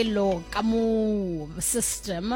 elo ka mo system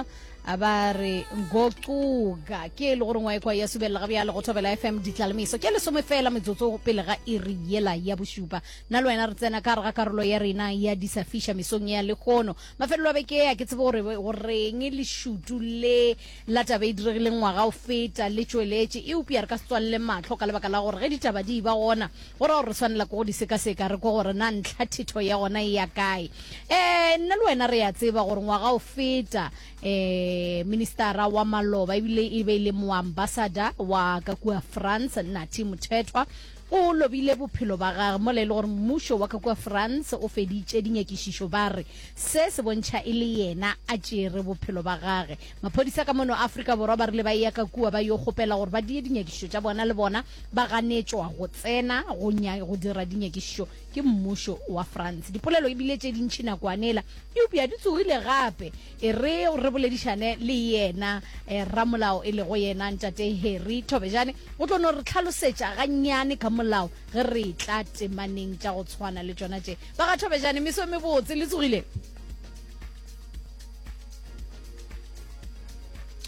a ba re ngocuka ke e le gore ngwa ekwa ya subelela ga bjalo go thobela fm ditlalemiso ke lesome fela metsotso pele ga iri yela ya bošupa nna le wena re tsena ka gare ga karolo ya rena ya disafiša mesong ya lekgono mafelelo a beke a ke tsebe gore goreng lešutu le La taba e diregileng ngwaga o feta le tšweletše, eupša re ka se tswalele mahlo ka lebaka la gore ge ditaba di eba gona, go ra gore re swanela ke go di sekaseka re kwe gore na ntlha thetho ya gona e ya kae. Ee, nna le wena re a tseba gore ngwaga o feta ee, ministara wa maloba e bile e be e le moambasada wa ka kua France, Nathi Mothethwa, o lobile bophelo ba gage mola e le gore mmušo wa ka kua France o feditše dinyakišišo ba re se se bontšha e le yena a tšere bophelo ba gage. Maphodisa ka mono Afrika Borwa ba rile ba eya ka kua ba yo kgopela gore ba die dinyakišišo tša bona le bona ba ganetšwa go tsena go nya go dira dinyakišišo ke mmušo wa France. Dipolelo e bile tše dintši nakoane ela eupša di tsogile gape e re re boledišane le yena eh, ramolao e lego yena ntate Harry Thobejane o tlo no re tlhalosetša gannyane ka molao ge re tla temaneng tša go tshwana le tšona tše. Ba ga Thobejane meso e mebotse le tsogile.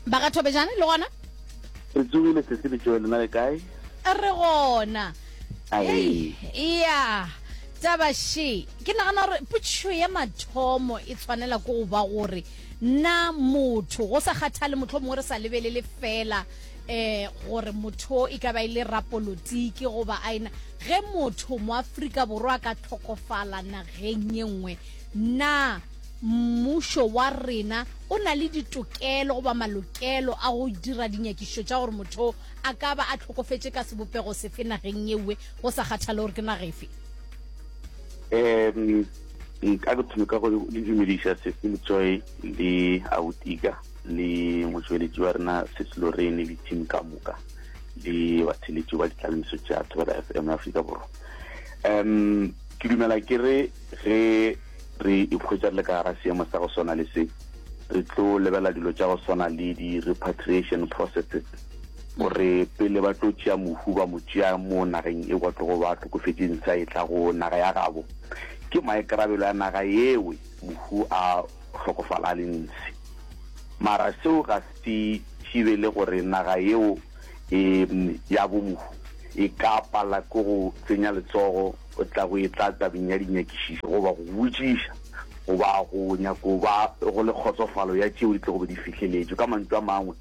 ba ga thobejane le gona re tsogile sesi le joe lena le kae re gona ya taba she ke nagana gore putšho ya mathomo e tshwanela ko go ba gore na motho go sa kgathale motlho mongwe re sa lebelele fela eh gore motho e ka ba e le rapolotiki goba a ena ge motho mo Afrika borwa ka tlhokofala nageng ye nngwe Na mmušo wa rena o na le ditokelo goba malokelo a go dira dinyakišišo tša gore motho a ka ba a tlhokofetše ka sebopego sefe nageng ye nngwe go sa kgathale gore ke naga efe? Um, nka ke thome ka go le dumediša Cecil Joy le Autika le motšweletši wa rena Cecil Lorraine le team ka moka le batheletši ba ditlaleletso tša Thobela FM Afrika Borwa. Um ke dumela ke re Ge re ikhwetša re le ka gara seemo sa go swana le se, re tlo lebela dilo tša go swana le di-repatriation processes, gore pele ba tlo tšea mohu ba mo tšea mo nageng e kwa tlogo ba hlokofetše ntsha e tla go naga ya gabo. Ke maikarabelo ya naga yeo mohu a hlokofala a le ntshe. Mara seo ga se thibele gore naga yeo ya bo mohu e ka pala ke go tsenya letsogo. O tla go etla tabeng ya dinyakišišo goba go botšiša goba go nyako ba go le kgotsofalo ya tšeo di tlogo be di fihleletšwe. Ka mantšu a mangwe,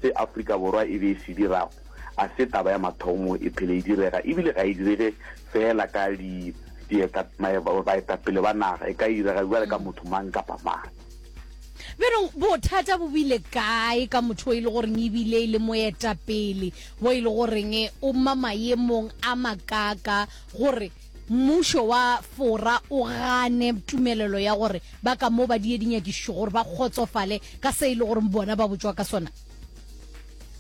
se Afrika Borwa e be e se dirago a se taba ya mathomo e phele e direga ebile ga e direge feela ka di baetapele ba naga, e ka direga bjale ka motho mang kapa mang. bjalo bothata bo bile kae ka motho o e le goreng ebile e le moetapele wo e le goreng o ma maemong a makaka gore mmušo wa fora o gane tumelelo ya gore ba ka mo ba die dinyakišišo gore ba kgotsofale ka se e le goreng bona ba botswa ka sona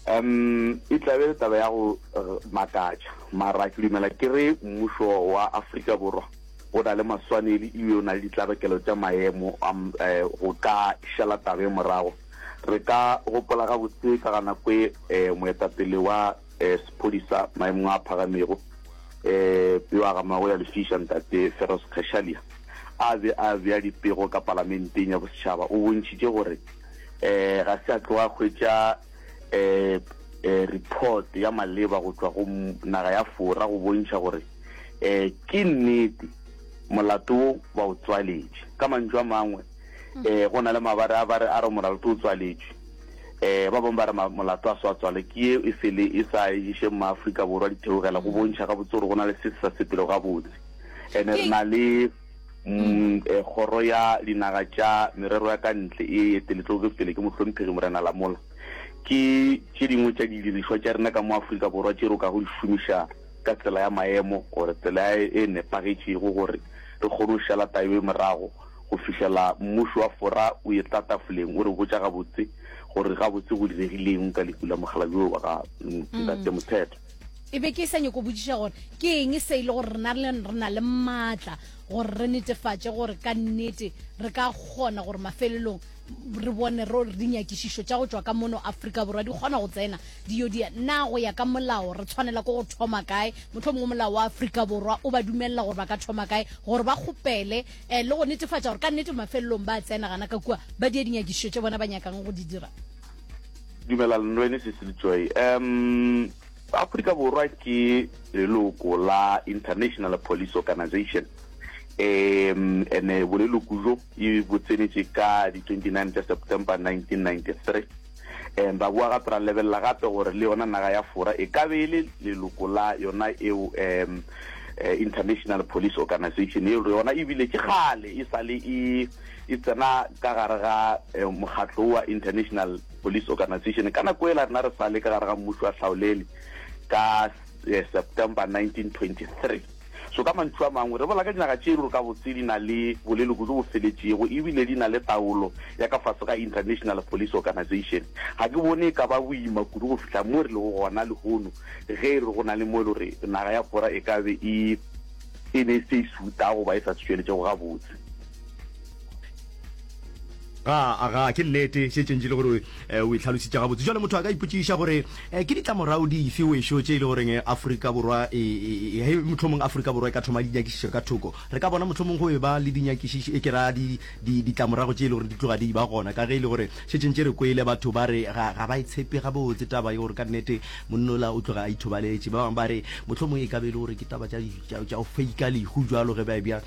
um e tlabe le taba ya go eh, makatša mara ke dumela ke re mmušo wa afrika borwa O na le maswanedi e be o na le ditlabakelo tša maemo a go ka šala taba ye morago. Re ka gopola gabotse ka ga nako e moetapele wa sephodisa maemong a phagamego yo a gamago ya Lefiša Ntate Feroz Cachalia a be a bea dipego ka Palamenteng ya Bosetšhaba. O bontšhitše gore ga se a tloga a hwetša report ya maleba go tšwa go naga ya Fora go bontšha gore e ke nnete molato wo ba o tswaletše ka mantšu a mangwe um go na le mabare a ba re a re molato o tswaletše um ba bangwe ba re molato a se wa tswale ke ye e sele e sa ešeng maaforika borwa ditheogela go bontšha gabotse gore go na le se se sa sepelo gabotse and re na le um kgoro ya dinaga tša merero ya ka ntle e eteletloge pele ke mohlomphegi morena lamola ke tše dingwe tša didirišwa tša rena ka mo aforika borwa tše ro ka go di šomišang ka tsela ya maemo gore tsela ya e nepagetšego gore re kgone go šala tayo e morago go fihlela mmušo wa fora o e tla tafoleng o re botša gabotse gore gabotse go diregileng ka leku la mokgalabje o ba ga ntate mm. mothetho e be ke sa nyako botsiša gore ke eng se e le gore rena re na le maatla gore re netefatše gore ka nnete re ka kgona gore mafelelong re bone ro dinyakišišo tša go tšwa ka mono afrika borwa di kgona go tsena di yo dia na go ya ka molao re tshwanela ko go thoma kae motlho mongwe molao wa afrika borwa o ba dumelela gore ba ka thoma kae gore ba kgopele um le go netefatša gore ka nnete mafelelong ba tsena gana ka kua ba dia dinyakišišo tše bona ba nyakang go di dira dumela lenwene sesilitsoe um afrika borwa ke leloko la international police organization um ene boleloko jo e botsenetše ka di 29 tša September 1993. Ba boa gape ra lebelela gape gore le yona naga ya Fora e ka be e le leloko la yona eo International Police Organisation eo yona ebile ke kgale e sa le e e tsena ka gare ga mokgatlo wa International Police Organisation ka nako ela rena re sa le ka gare ga mmušo wa tlhaolele ka September 1923. So ka mantšu a mangwe, re bolela ka dinaga tše e lego gabotse di na le boleloko bjo bo feletšego e bile di na le taolo ya ka fase ga International Police Organization. Ga ke bone e ka ba boima kudu go fihla mo re lego gona lehono ge e re go na le mo e lego gore naga ya Bora e ka be e e be e se e suta goba e sa se tšweletšego gabotse. ga aga ke nnete se tšentši le gore eh, o itlhalositša gabotse jale motho a ka ipotšiša gore eh, ke ditlamorago dife wešo tše e le goreng eh, aforika borwa e, e, e, mohlomong aforika borwa e ka thoma dinyakišišo ka thoko re ka bona mohlomong go e ba le dinyakišišo e ke ra ditlamorago tše e le gore di tloga di ba gona ka ge e le gore se tšentše re kwele batho ba re ga ba e tshepe gabotse taba e gore ka nnete monnola o tloga a ithobaletše ba bangwe ba re mohlomong e ka be e le gore ke taba tša go feika lehu jalo ge ba e bjang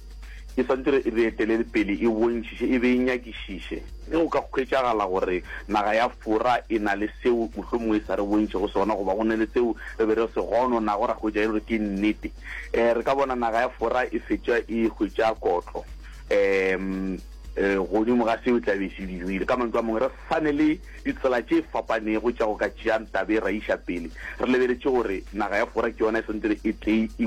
E swantse re e etelele pele, e bontšhiše, e be e nyakišiše. Ge go ka hwetšagala gore naga ya Fora e na le seo mohlomongwe e sa re bontšego sona, goba go na le seo re be re se gononago ra hwetša e le gore ke nnete, um re ka bona naga ya Fora e fetša e hwetša kotlo um godimo ga seo e tla be e se dirile. Ka mantšu a mangwe, re sa ne le ditsela tše fapanego tša go ka tšeang taba e ra iša pele re lebeletše gore naga ya Fora ke yona e swantse e tle e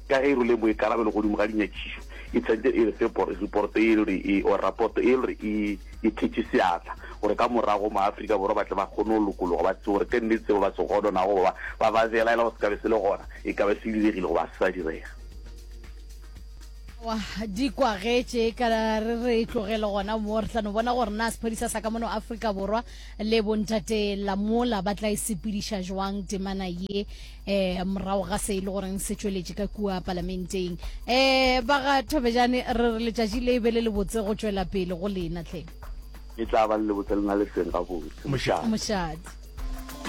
Ka ge e rwele boikarabelo godimo ga dinyakišišo, e tshwanetse e fe reporto e le gore e, or rapoto e le gore e, e thetše seatla, gore ka morago maAfrika Borwa ba tle ba kgone go lokologa, ba tsebe gore ke nnete seo ba se godonago goba ba ba belaela gore se ka be se le gona, e ka be se diregile goba se sa direga. Aowa, di kwagetše, ka re re tlogele gona mo, re tla no bona gore na sephodisa sa ka mono Afrika Borwa le bontate Lamola ba tla e sepediša jwang temana ye. eh morago ga se e le goreng se tšweletše ka kua palamenteng eh ba ga thobejane re re letšatši le be le le botse go tšwela pele go lena tle e tla ba le lebotse le na le seng gabotse mošadi mošadi